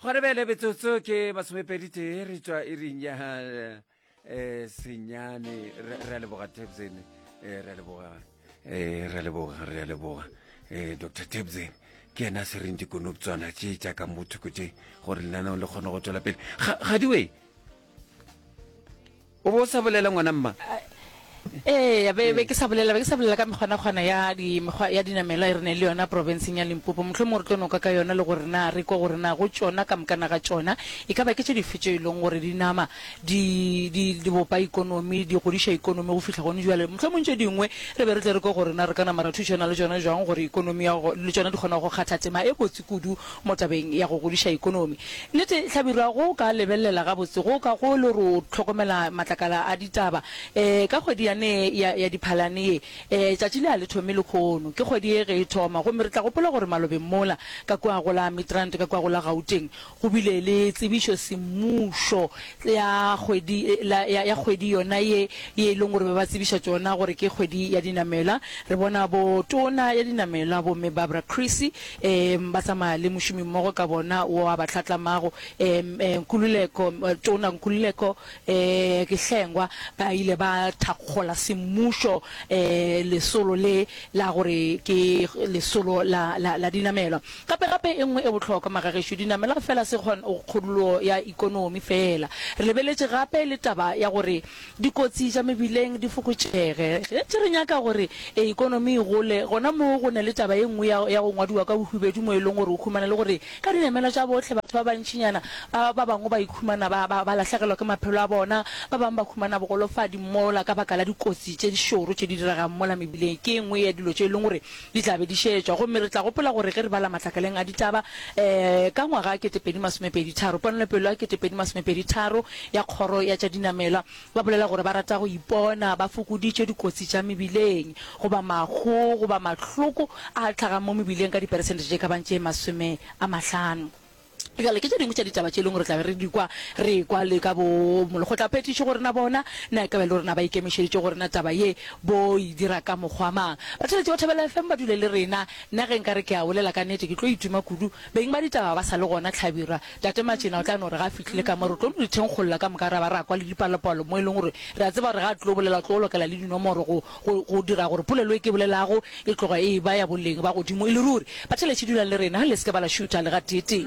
gona bjale metsotso ke masomepedi tee re tšwa iring ya um senyane re a leboga tebsen eh, re a leboga um eh, re a leboga re a leboga um dr tebsen ke ena se reng dikonoptswana tše tša ka mothoko tše gore lenaneo le kgone go tswela pele gadiwe O be o sa bolela, ngwana, mma? Eya, be, be ke sa bolela, be ke sa bolela ka mekgwanakgwana ya di, mekgwa ya dinamelwa e re neng le yona profenseng ya Limpopo. Mohlomongwe re tlo no ka ka yona le gore na re kwe gore na go tšona, ka mokana ga tšona, e ka ba ke tše dife tšeo e lego gore di nama di, di, di bopa ekonomi, di godiša ekonomi go fihla gone bjale. Mohlomongwe tše dingwe re be re tle re kwe gore na re ka nama ra thušana le tšona bjang gore ekonomi ya go, le tšona di kgona go kgatha tema e botse kudu mo tabeng ya go godiša ekonomi. Nnete, hlabirwa, go o ka lebelela gabotse go o ka go e le gore o hlokomela matlakala a ditaba. Ee, ka kgwedi yane ya, ya Diphalane ye, ee, tšatši le a le thome lekhono. Ke kgwedi ye ge e thoma. Gomme re tla gopola gore malobeng mola, ka kua go la Midrand, ka kua go la Gauteng, go bile le tsebišo semmušo ya kgwedi, la, ya, ya kgwedi yona ye, ye e leng gore ba ba tsebiša tšona gore ke kgwedi ya dinamelwa. Re bona bo tona ya dinamelwa, bo Mme Barbara Creecy, Eem, ba tsamaya le mošomimmogo ka bona wo a ba hlatlamago, eem, eeh, Nkululeko, Tona Nkululeko, eeh, ke Hlengwa, ba ile ba thakgola semmušo, eeh, lesolo le la gore ke lesolo la, la, la dinamelwa. Gape, gape e nngwe e bohlokwa, magagešo, dinamelwa feela se kgon, kgolulo ya ekonomi feela. Re lebeletše gape le taba ya gore dikotsi tša mebileng di fokotšege. Ge re nyaka gore ekonomi e gole, gona moo go na le taba ye nngwe ya, ya go ngwadiwa ka bohubedu mo e leng gore o humana e le gore ka dinamelwa tša bohle batho ba bantšinyana ba, ba bangwe ba ikhumana ba, ba, ba lahlegelwa ke maphelo a bona, ba bangwe ba humana bogolofadi mola ka baka la dikotsi tše di šoro tše di diregang mola mebileng. Ke e nngwe ya dilo tše e leng gore Di tla be di šetšwa, gomme re tla gopola gore ge re bala matlakaleng a ditaba, ee, ka ngwaga wa ketepedi masomepedi tharo, ponelopele ya ketepedi masomepedi tharo ya Kgoro ya tša Dinamelwa, ba bolela gore ba rata go ipona ba fokoditše dikotsi tša mebileng, goba mahu, goba mahloko a hlagang mo mebileng ka diperesente tše ka bang tše masome a mahlano. Bjale, ke tše dingwe tša ditaba tše e lego re tla be re di kwa, re ekwa le ka bo molekgotlaphethiši gore na bona na e ka ba e le gore na ba ikemišeditše gore na taba ye bo e dira ka mokgwa mang. Batheeletši ba Thobela FM ba dule le rena. Nna ge nka re ke a bolela ka nete ke tlo ituma kudu. Beng ba ditaba ba sa le gona, Hlabirwa, Tate Matšena o tla no re ga a fihlile ka mo re tlo no di thenkgolla ka moka ra ba ra kwa le dipalopalo mo e lego gore re a tseba gore ga a tlo bolela o tlo lokela le dinomoro go go, go dira gore polelo e ke bolelago e tloga e e-ba ya boleng ba godimo e le ruri. Batheeletši, dulang le rena, le se ke ba la šutha le gateetee.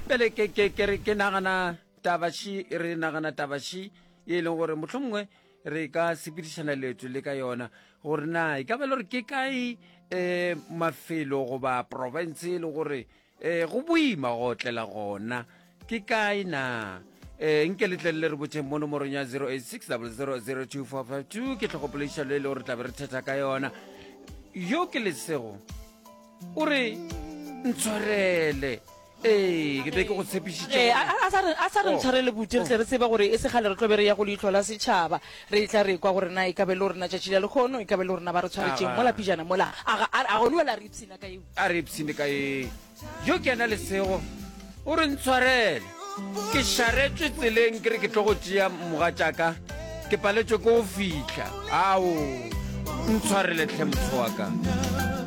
Bjale, ke, ke, ke re, ke nagana taba ši, re nagana taba ši ye e leng gore mohlomongwe re ka sepedišana leeto le ka yona, gore na e ka ba le gore ke kae um mafelo goba province e le gore Ee, go boima go otlela gona. Ke kae na? Ee, nke letleng le re botšeng mo nomorong ya 0860002452 ke tlhogopolediša lo e le gore tlabe re thetha ka yona. Yo ke lesego o re ntshwarele ee ke be ke go tshepišitše Eh, a gore- a- a sa re- a sa re Oh. ntshware le bute re tle re tseba gore e se gale re tlobe re ya go leitlho la setšhaba re tla re kwa gore na e kabe le gorena tšatši la lekgono e kabe le gorena ba re tshwaretšeng Aga. mola pijana mola aga a- a gone wela re ipshina ka eo A re ipshine ka eng? Yo ke ena lesego. O re ntshwarele. Ke šaretšwe tseleng ke re ke tlo go tšea mogatšaka. Ke paletšwe ke go fihla. Ao, ntshwarele tlhe moswa ka.